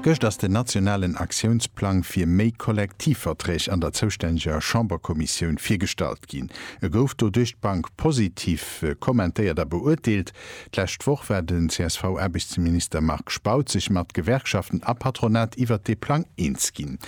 Gëscht ass den nationalen Aktiounsplang fir méi Kollektivverträg an der zoustänneger Chamberkommissioun virgestallt ginn. E gouf do duerch d'Bank positiv kommentéiert a beurteelt. D'lescht Woch war den CSV-Aarbechtsminister Marc Spautz sech mat Gewerkschaften a Patronat iwwert dee Plang eens ginn.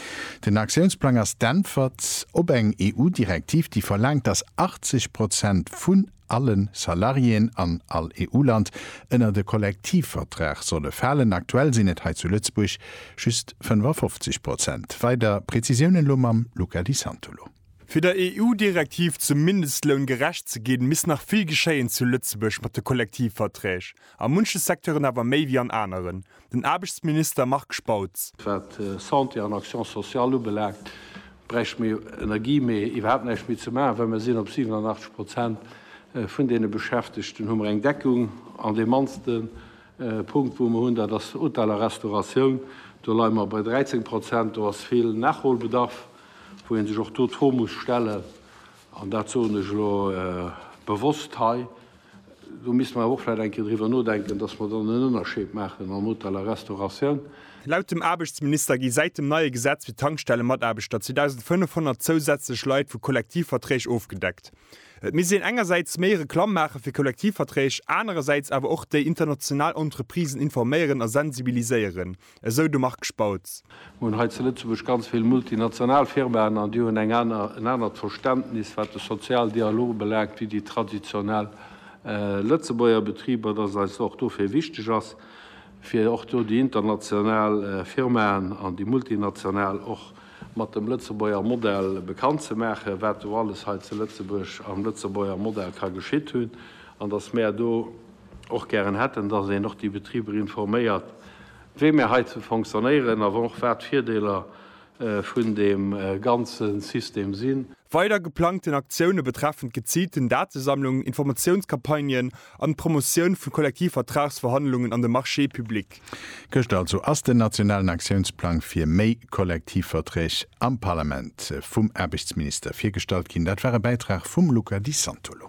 Den Aktiounsplang ass d'Äntwert op eng EU-Direktiv, déi verlaangt, datt 80 Prozent vun allen Salariéen an all EU-Land ënnert e Kollektivvertrag solle falen. Aktuell sinn et hei zu Lëtzebuerg just 55 Prozent. Weider Prezisiounen elo mam Luca Di Santolo. Fir der EU-Direktiv zum Mindestloun gerecht ze ginn, misst nach vill geschéien zu Lëtzebuerg mat de Kollektivverträg, a munche Secteuren awer méi wéi an aneren. den Aarbechtsminister Marc Spautz. Wat Santé an Action sociale ubelaangt, bräichte mir Energie méi iwwerhaapt näischt méi ze maachen, well mir sinn op 87 Prozent vun deene Beschäftegten hu mer eng Deckung. An dee mannste Punkt, wou mer hunn, dat ass Hotel a Restauratioun. Do leie mer bei 13 Prozent. Do ass vill Nachholbedarf, wou ee sech och do d'Fro muss stellen, an dat soen ech elo bewosst hei, do misste mer awer och vläicht eng Kéier driwwer nodenken, dass mer dann en Ënnerscheed maachen am Hotel a Restauratioun. Laut dem Aarbechtsminister gi säit dem neie Gesetz fir d'Tankstellemataarbechter 2.500 zousätzlech Leit vu Kollektivverträg ofgedeckt. Et misst een engersäits méi Reklamm maache fir Kollektivverträg, anerersäits awer och déi international Entreprisen informéieren a sensibiliséieren. esou de Marc Spautz. Mir hunn hei zu Lëtzebuerg ganz vill multinational Firmaen an déi hunn eng aner, en anert Verständnis, wat de Sozialdialog ubelaangt, wéi déi traditionell Lëtzebuerger Betriber, dass eis och dofir wichteg ass, fir och do déi international Firmaen an déi multinational och mat dem Lëtzebuerger Modell bekannt ze maachen, wat do alles hei zu Lëtzebuerg am Lëtzebuerger Modell ka geschitt hunn an dass mär do, och gären hätten, dass een och déi Betriber informéiert, wéi mär heizou fonctionnéieren a och wat d'Virdeeler vun deem ganze System sinn. Weider geplangten Aktioune betreffen d'geziilten Datesammlung, Informatiounscampagnen an d'Promotioun vu Kollektivvertragsverhandlungen an de Marché public. Gëschter also ass den nationalen Aktiounsplang fir méi Kollektivverträg am Parlament vum Aarbechtsminister virgestallt ginn. Dat war e Bäitrag vum Luca Di Santolo.